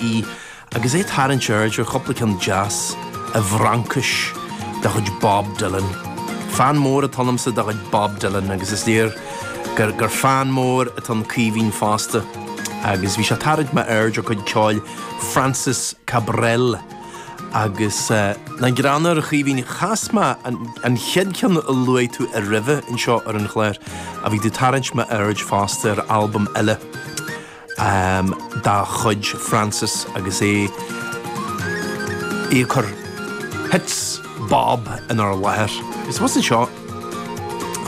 í agus é ag tarraingt aird ar chúpla ceann deas i bhFraincis de chuid Bob Dylan. Fan mór atá ionamsa de chuid Bob Dylan agus is léir gur gur fan mór atá i gCaoimhín fosta agus bhí sé ag tarraingt m'aird ar chuid ceoil Francis Cabrel agus rud greannmhar, a Chaoimhín, chas mé an an chéad cheann a luaigh tú roimhe anseo ar an chlár ach bhí tú ag tarraingt m'aird fosta ar albam eile. um dá chuid, Francis agus é ag cur hits Bob inár láthair. Agus abhus anseo,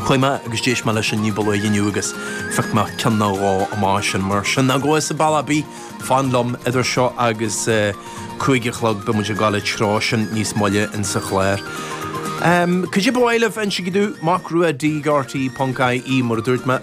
chuaigh mé agus d'éist mé leis sin ní ba luaithe inniu agus phioc mé ceann nó dhó amach as sin mar sin. Ná gabh chun an bhaile, fan liom idir seo agus cúig a chlog, beidh muid ag gabháil an treo sin níos moille in sa chlár. Um cad é ar bith eile ba mhaith libh a inse domh, macrua at rte ponc ie, mar a dúirt mé.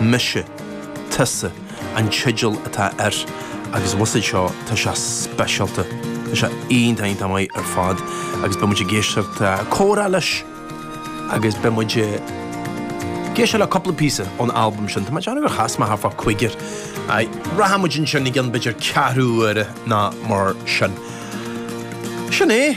Mise, Tusa an teideal atá air agus an mh'anam anois, tá sé speisialta, tá sé iontach, iontach maith ar fad agus beidh muid ag éisteacht le comhrá leis agus beidh muid ag éisteacht le cúpla píosa ón albam sin, tá mé ag déanamh gur chas mé thart fá cúigear acu. Rachaidh muid ansin i gcionn b'fhéidir ceathrú uaire ná mar sin. Sin é.